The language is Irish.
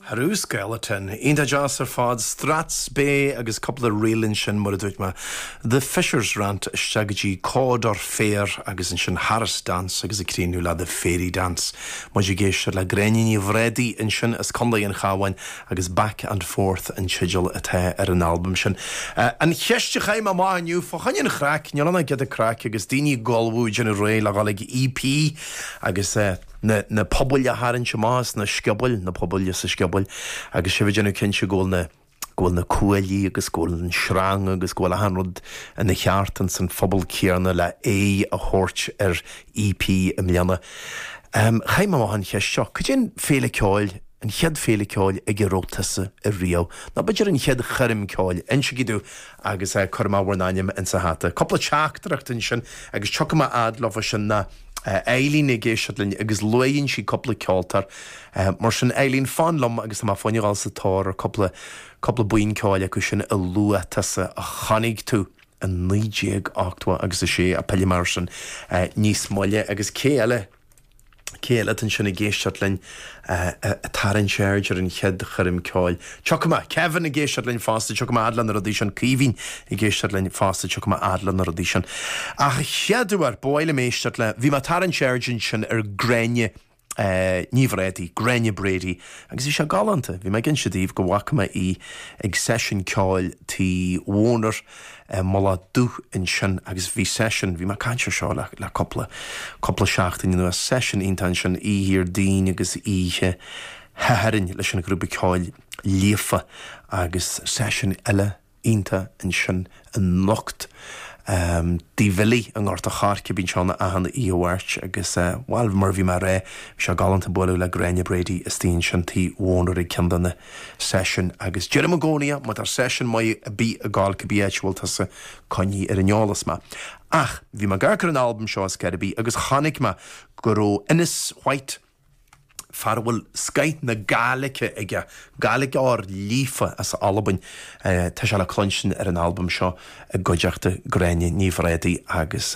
Tharraing Skeleton iontach deas ar fad, strathspey agus cúpla ríl ansin, mar a dúirt mé, The Fishers Rant isteach go dtí Cawdor Fair agus ansin Harris Dance agus ag críochnú le The Fairy Dance. Muid ag éisteacht le Gráinne Ní Bhrádaigh ansin as Contae an Chabháin agus Back and Forth an teideal atá ar an albam sin. An cheist a chaith mé amach inniu, fá choinne an chraic, níl ann ach giota craic agus daoine ag ullmhú, ag déanamh réidh le dul ag EP agus, na pubaill a tharraingt amach as na sciobail, na pubaill sna sciobail, agus sibh ag déanamh cinnte go bhfuil na, go bhfuil na cuaillí agus go bhfuil an sreang agus go bhfuil achan rud ina cheart in san phuball céanna le aghaidh a thabhairt ar EP i mbliana. Chaith mé amach an cheist seo, cad é an féile ceoil, an chéad féile ceoil ag a raibh tusa i riamh, nó b'fhéidir an chéad choirm ceoil, insígí domh agus cuirfidh mé bhur n-ainm insa hata. Cúpla teachtaireacht ansin agus tiocfaidh mé fhad leofa sin. Tá Eileen ag éisteacht linn agus luann sí cúpla ceoltóir. Mar sin Eileen, fan liom agus tá mé fá choinne a dhul sa tóir ar cúpla cúpla buíon ceoil acu sin a luaigh tusa a chonaic tú i 1986 pillfidh mé air sin níos moille agus cé eile? cé eile atá ansin ag éisteacht linn ag tarraingt aird ar an chéad choirm ceoil. Tiocfaidh mé, Kevin ag éisteacht linn fosta, tiocfaidh mé fhad le na rudaí sin, Caoimhín ag éisteacht linn fosta, tiocfaidh mé fhad le na rudaí sin. Ach a chéad uair ba mhaith liom éisteacht le, bhí mé ag tarraingt aird ansin ar Gráinne Ní Bhrádaigh, Gráinne Brady, agus bhí sé galánta. Bhí mé ag inse daoibh go bhfaca mé í ag seisiún ceoil Tigh Bhonner, i Mullach Dubh ansin agus bhí session, bhí mé ag caint ar seo le cúpla, cúpla seachtain anuas, session iontach ansin oíche Dhéardaoin agus oíche Shathairn leis an ghrúpa ceoil Líofa agus session eile iontach ansin anocht Tigh Bhilly i nGort an Choirce, bíonn sé ann achan oíche Mháirt agus bhuel mar a bhí mé a rá, bhí sé galánta bualadh le Gráinne Brady istigh ansin Tigh Bhonner ag ceann de na. session, agus deirim i gcónaí é, má tá session maith ar bith ag gabháil cibé áit a bhfuil tusa, coinnigh ar an eolas mé. Ach bhí mé ag amharc ar an albam seo ar scor ar bith agus chonaic mé go raibh Innes White, fear a bhfuil scoith na Gaeilge aige, Gaeilgeoir líofa as Albain, tá sé le cluinstin ar an albam seo i gcuideachta Gráinne Ní Bhrádaigh agus.